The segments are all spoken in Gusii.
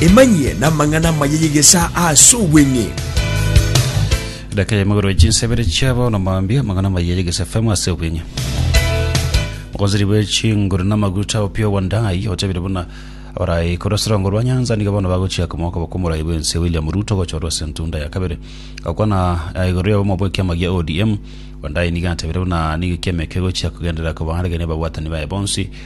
Emanyie n'amang'ana amaya y'egesaa ase obweng'e. Edaka ya magoro ya chinsa ibere chiabo na mambia amang'ana amaya y'egesa FM ase obweng'e. Ogonziri bwe chinguru na amaguta opio Wandai otabire buna abarai korwa ase rongo rwa Nyanza nigo bono bagochia komoka bokomorai bwense William Ruto gochorwa ase entunda ya kabere. Gokwana eh, igoro ya obomo bw'ekiama gia ODM, Wandai nigo atabire buna nigo ekiama eke egochia kogenderera kobaarigeria ababwatani baye bonsi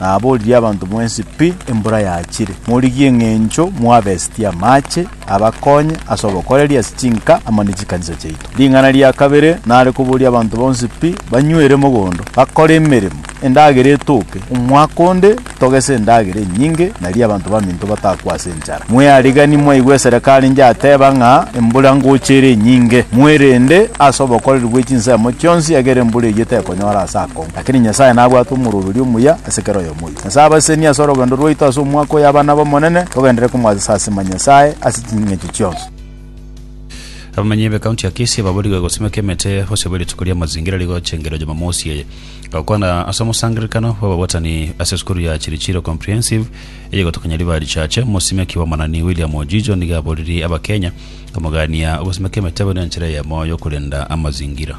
Naboririe abanto mwensi pi embura yachire, morigie eng'encho mwabestie amache abakonye ase obokoreri ase chinka amo ne chikanisa chiaito. Ring'ana ria kabere nare koboria abanto bonsi pi banywere mogondo, bakore emeremo, endagera etoke, omwaka onde togese endagera enyinge, nario abanto baminto batakwe ase enchara. Mweariganie mwaigwe eserekari njateba ng'a embura ngocha ere enyinge. Mwerende ase obokoreri bwe chinsemo chionsi, ekiagera embura eyio tekonyora ase akong'u. Lakini Nyasae nabwate omoroberio omuya ase kera oyomoito. Nyasae abasesenie ase orogendo rwaito ase omwaka oyo abana b'Omonene togenderere komwatesa ase Nyasae ase ching'encho chionsi. Abamanyi be county ya Kisii baburigwe gosimeka emete bosio bwe rituko ri'amazingira rigocha engiroji Jumamosi eye. Gokwana ase omosangererekano bw'ababwatani ase esukuru ya Chirichiro Comprehensive eye gotokanya riba richache, Omosimeki Omonani William Ojijo nigo aboririe Abakenya komogania ogosimeka emete buna enchera eyemo y'okorenda amazingira.